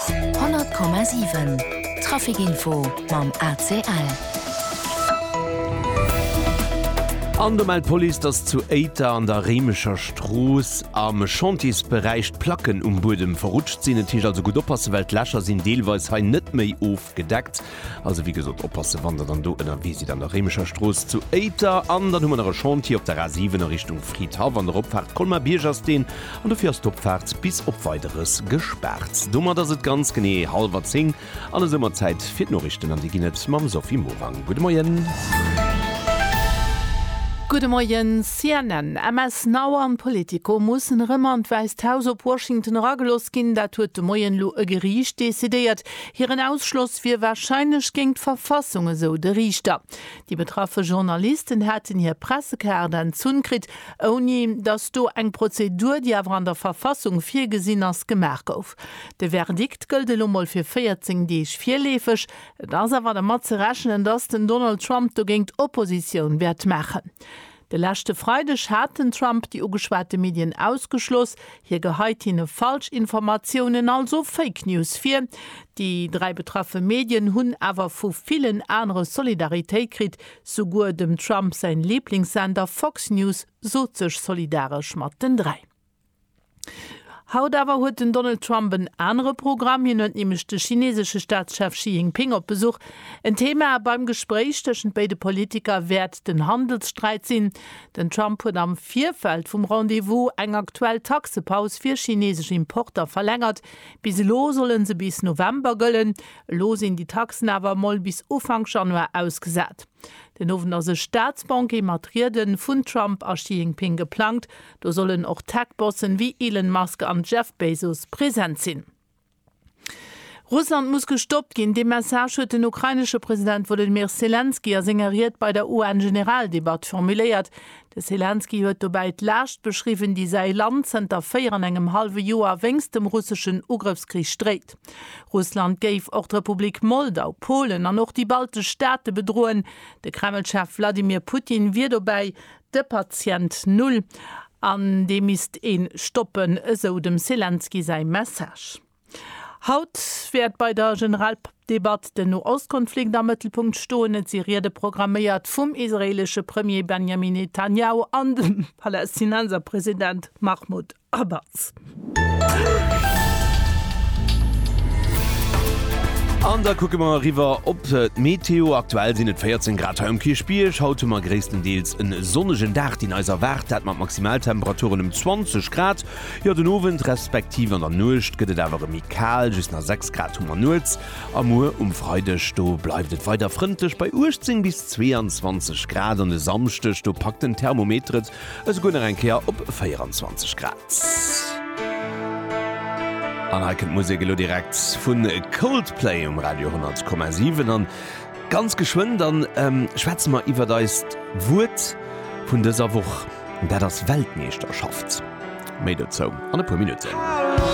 100,7 Traficinfo mam ACL. An do mellt d'Police, datt zu Éiter an der Réimecher Strooss am Chantiers-Beräich d'Placken um Buedem verrutscht sinn. Et heescht also gutt oppassen, well d'Lächer sinn deelweis hei net méi ofgedeckt. Also wéi gesot, oppassen, wann Der dann do ënnerwee sidd an der Réimecher Strooss zu Éiter. An dann hu mer nach e Chantier op der A 7 a Richtung Fridhaff an der Opfaart Colmar-Bierg ass deen an dofir ass d'Opfaart bis op Weideres gespaart. Domat ass et ganz genee hallwer zéng an esou mat Zäit fir d'Norichten an déi ginn et mam Sophie Morang. Gudde Moien. Gudde Moien. CNN, MS Now an Politico mussen erëm an d'Wäisst Haus op Washington erageloss ginn. Dat huet de Moien elo e Geriicht decidéiert. Hiren Ausschloss wier warscheinlech géint d'Verfassung, esou de Riichter. Déi betraffe Journalisten hätten hir Pressekaart entzunn kritt, ouni datt do eng Prozedur, déi awer an der Verfassung virgesinn ass, gemaach gouf. De Verdikt gëllt elo mol fir 14 Deeg virleefeg. Et ass awer dermat ze rechnen, datt den Donald Trump dogéint Oppositioun wäert maachen. De leschte Freideg hat den Trump déi ugeschwate Medien ausgeschloss. Hie geheit hinne Falschinformatiounen, also Fake News vir. Déi dräi betraffe Medien hunn awer vu villen anere Solidaritéit kritt. Souguer dem Trump säin Liblingssender Fox News sot sech solidaresch mat den dräi. Haut awer huet den Donald Trump en anere Programm. Hien huet nämlech de chinesesche Staatschef Xi Jinping op Besuch. En Thema beim Gespréich tëschent béide Politiker wäert den Handelssträit sinn. Den Trump huet am Virfeld vum Rendez-vous eng aktuell Taxepaus fir chinesesch Importer verlängert. Bis elo solle se bis November gëllen. Elo sinn déi Taxen awer mol bis Ufank Januar ausgesat. Den Owend ass e Staatsbanquet mat Riede vun Trump a Xi Jinping geplangt. Do sollen och Tech-Bossen wéi Elon Musk an Jeff Bezos present sinn. Russland muss gestoppt ginn, dee Message huet den ukrainesche President Wolodymyr Selenskyj a senger Ried bei der UN-Generaldebatt formuléiert. De Selenskyj huet dobäi d'Laascht beschriwwen, déi säi Land zënter véier an engem hallwe Joer wéinst dem russeschen Ugrëffskrich dréit. Russland géif och d'Republik Moldau, Polen an och déi baltesch Staate bedroen. De Kreml-Chef Wladimir Putin wier dobäi, De Patient Null, an dee misst ee stoppen, esou dem Selenskyj säi Message. Haut wäert bei der Generaldebatt den Noostkonflikt am Mëttelpunkt stoen. Et si Riede programméiert vum israeelesche Premier Benjamin Netanjahu an dem Palästinenserpresident Mahmoud a Batz. An da kucke mer eriwwer op d'Meteo. Aktuell sinn et 14 Grad hei um Kierchbierg. Haut hu mer gréisstendeels en sonnegen Dag, deen eis erwaart, dat mat Maximaltemperaturen ëm 20 Grad. Jo, den Owend respektiv an der Nuecht gëtt et awer erëm méi kal, just nach 6 Grad hu mer nuets. A muer um Freideg, do bleift et weider frëndlech bei 18 bis 22 Grad. An e Samschdeg, do packt den Thermometer et Esouguer nach eng Kéier op 24 Grad. An hei kënnt d'Musek elo direkt vu Coldplay um Radio 10,7. An ganz geschwënn da schwätze mer iwwert eist Wuert vun dëser Woch. Dat ass Weltmeeschterschaft. Méi dozou an e puer Minutten.